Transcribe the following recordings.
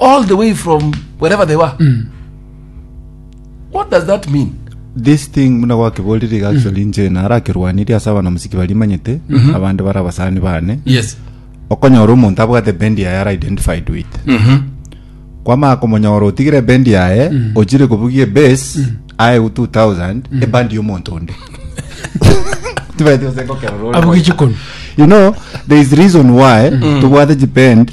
all the way from wherever they were what does that mean this thing muna gwakeborire iga actually inche narakerwanirie ase abana musiki barimanyete abande bara abasani bane yes okonyora omonto abwate bendi yaye ara identified with kwamaya komonyora otigire bendi yaye ochire kobugia ebase aye 2000 ebandi y'omonto onde Tibaeti gose ngokerora ore abuge moyo. chikoni you know there is reason why tobwate chipend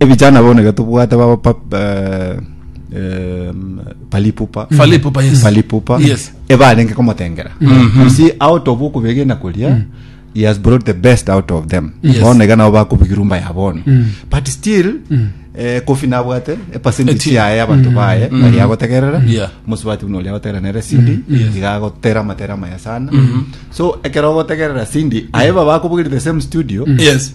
Ebijana bono iga tobwate baba pa, eh, eh, palipupa Falipupa, yes. palipupa Yes. ebarenge komotengera you see out of okobegena koria he has brought the best out of them Yes. bono iga nabo bakobigirwa mba ya bono but still eh, kofi nabwate epercentage Eti- yaye abanto baye bari agotegerera Yeah. mosubati buna oria agotegerera nere sindi Yes. iga agotera amatera maya sana so ekero ogotegerera sindi aye baba akobugiri the same studio yes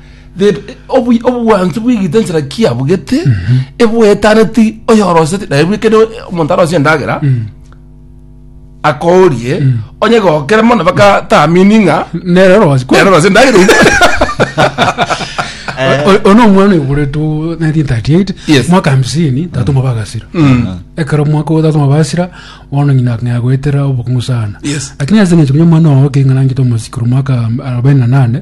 The- obu- obwansu bwigite ensera kiabugete ebwetaneti oyoroseti naye bwekene omonto arosie endagera akorie onye gokere mono bakatamini ng'a nere rosi nero orose endagera iga. ono omwana oyoboretwe 1938 Yes. mwaka hamsini tatoma bagasira ekero mwaka ogo tatoma basira bono nyina ng'a goetera obokong'u sana Yes. lakini ase eng'encho buna omwana ogo keng'ana ngite omosikuru mwaka arobaini na nane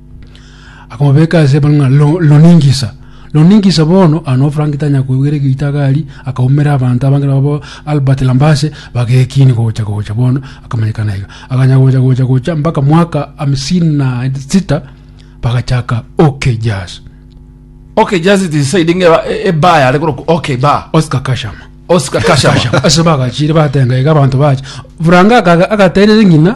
Akamobeka ase ebanga ng'a "Lo- loningisa loningisa bono ano frank tanya kwegwera egeita gari akaumera abanto abange nabo bo albert lambase bagekini gocha gocha bono akamanyekana iga aganya gocha gocha gocha mpaka mwaka hamsini na sita bagachaka okay jazz okay just it is said inge ba- e- eba yare koroku okay ba oscar kashama oscar kashama ase bagachire batenga iga abanto bacha buranga akaga- agaterere ng'ina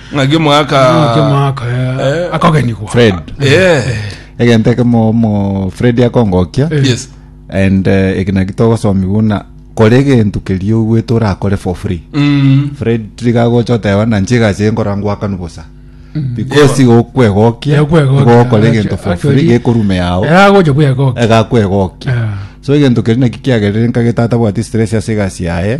ng'aki omwaka Ng'aki omwaka eh, Eh. akogenigwa fred Eh, egento ekemo omo fred akongokia Eh. yes and eh, eki naki togosomia buna kore egento keria ogwete orakore for free Mm, fred tiga gocha oteba na nche egasi eye nkora ngwakanu bosa because igo okwegokia igo okore egento for free gekorume yao eragocha bwegokia egakwegokia so egento keria naki kiagerere nkagete atabwati stress ase egasi yaye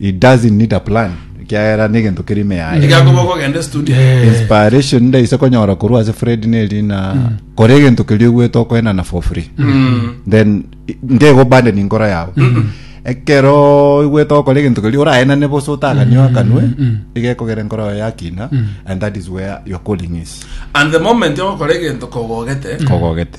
He doesn't need a plan ekiagera negento kere ime yaye. Iga koba okogenda studio. Inspiration ndaise konyora korwa ase Fred nerina mm. kore egento keria ogwete okoenana for free. Mm. Then ndego bande ni nkora yao. Mm. ekero igwete okora egento keria oraenane bosa otaganio akanwe mm, mm, igekogera nkora yayo yakina and that is where your calling is. And the moment ogokora egento kogogete. Kogogete.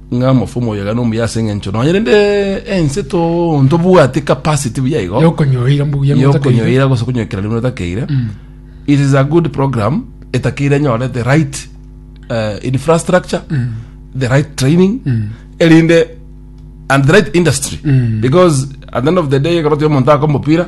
ng'a mofe omoyo iga nomuya ase engencho nonya rende ense to ntobwati capacity buya igo yokonyoira mbuya ng'o otakeire. yokonyoira gose konyoikera rimo otakeire it is a good program etakeire enyore the right uh, infrastructure the right training erinde and the right industry because at the end of the day ekero tiri omonto aka omopira